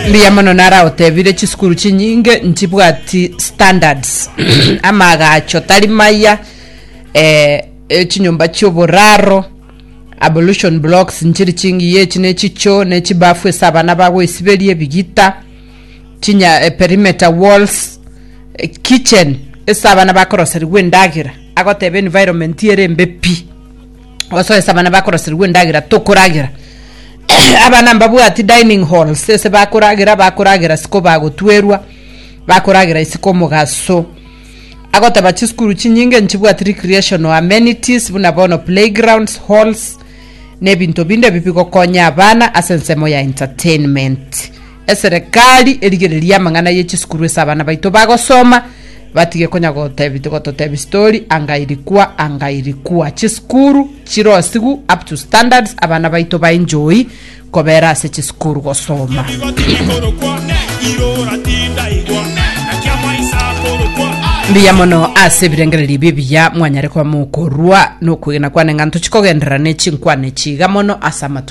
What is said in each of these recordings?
Mbuya mono nara otebire chisukuru chinyinge nchibwati standards amagacho tari maya eh, echinyomba chioboraro abolution blocks nchiri chingiya echi nechicho nechibafu ase abana bagoisiberia ebigita chinya eh, perimeter walls eh, kitchen ase abana bakoroserigwa endagera agoteba environment ere embe pi osoesa abana bakoroserigwa endagera tokoragera abana mbabwati dining halls ese bakoragera bakoragera siko bagotwerwa bakoragera isiko omogaso agoteba chisukuru chinyinge nchibwati recreational amenities buna bono playgrounds halls na ebinto binde ebi bigokonya abana ase ensemo ya entertainment Eserekari erigererie amang'ana ye chisukuru ase abana baito bagosoma batige konya gotebi gototebi story anga irikwa anga irikwa chisukuru chirosigu up to standards abana baito ba enjoy kobera ase chisukuru gosoma. Mbuya mono ase ebirengererio ebi ebiya mwanyare koba mokorua nokwegena kwane ng'a ntochi kogenderera ne chinkwana echi iga mono ase amatuko.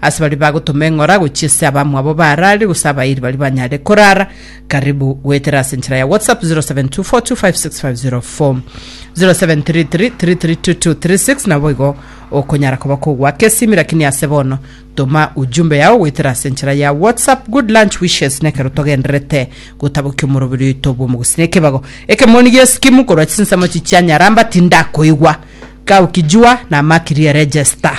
Ase baria bagotoma eng'ora gochia ase abamwabo baarare gose abairi baria banyare korara, karibu goetera ase enchera ya WhatsApp 0724256504 0733332236 na boigo okonyara koba kogwaka esimi lakini ase bono toma ujumbe yao goetera ase enchera ya WhatsApp good lunch wishes nekero togendererete gotabokia omoroberi oito bw'omogusi na ekebago ekemoni gi'esikimu korwa chinsemo chichia nyaramba tindakoigwa kaukijua na makiri ya register